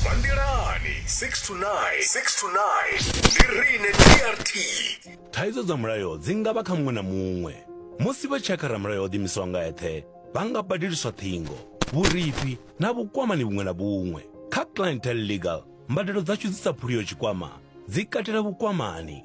Bandelani 6 to 9, 6 to 9. Ndi rine DRT. thaidzo dza mulayo dzi nga vha kha muṅwe na muṅwe musi vha tshi ya kha ramulayo o ḓiimisaho nga eṱhe vha nga badeliswa ṱhingo vhurifhi na vhukwamani vhuṅwe na vhuṅwe kha clientel legal mbadelo dzashu dzi sa phuliyo tshikwama dzi katela vhukwamani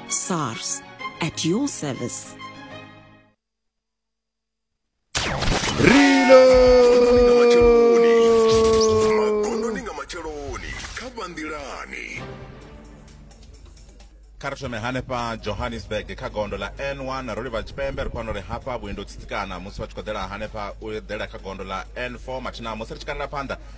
SARS at your service. kha ri thome hanefha johannesburg kha gondo ḽa n1 ro livha tshipembe ri khou wana uri hafha vhuendi u tsitsikana musi vha tshi khou ḓela hanefha u eḓela kha gondo ḽa n4 mathina musi ri tshi kalela phanḓa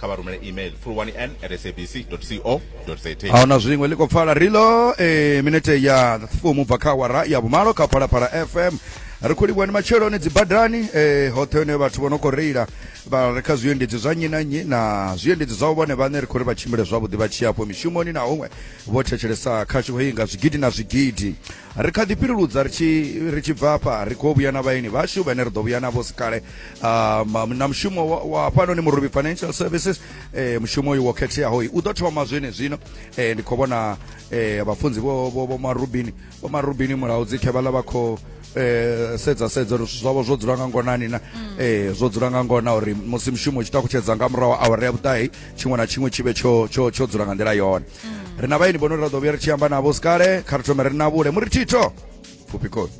kha vha rumele email fulwani n at sabc co za ahuna zwiṅwe ḽi khou pfala rilo e eh, minete ya fumu bva kha wara ya vhumalo kha phalaphala fm ri khou livhuwa ni matsheloni dzibadani eh, hoṱhe hune vhathu vho no khou reila vha re kha zwiendedzi zwa nnyi na nnyi na zwiendedzi zwavho vhone vhaṋe ri khou ri vha tshimbile zwavhuḓi vha tshi afho mishumoni na huṅwe vho thetshelesa khashu heyi nga zwigidi na zwigidi ri kha ḓi fhiluludza ri tshi ri tshi bva hafha ri khou vhuya na vhaeni vhashu vhane ri ḓo vhuya navho sikale um, na mushumo wa fhanoni murubi financial services eh, mushumo uyu wo khetheaho u ḓo thoma zwene zwino eh, ndi khou vhona eh, vhafunzi vho marubini vho marubini mulaho dzikhe vhaḽa vha khou eh sedza sedza uri zwithu zwavho zwo dzula nga ngonani na mm. eh zwo dzula nga ngona uri musi mushumo u tshi takutshedza nga murahu awara ya vhuṱahi tshiṅwe na tshiṅwe tshi vhe tsho tsho tsho dzula nga nḓila yone ri na vhaeni vhono ri ra ḓo vhuya ri tshi amba navho sikale kha ri thome ri na vhule muri thitho pfufhi khosi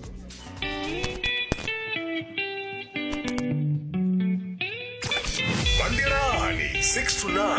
Bandelani 6 to 9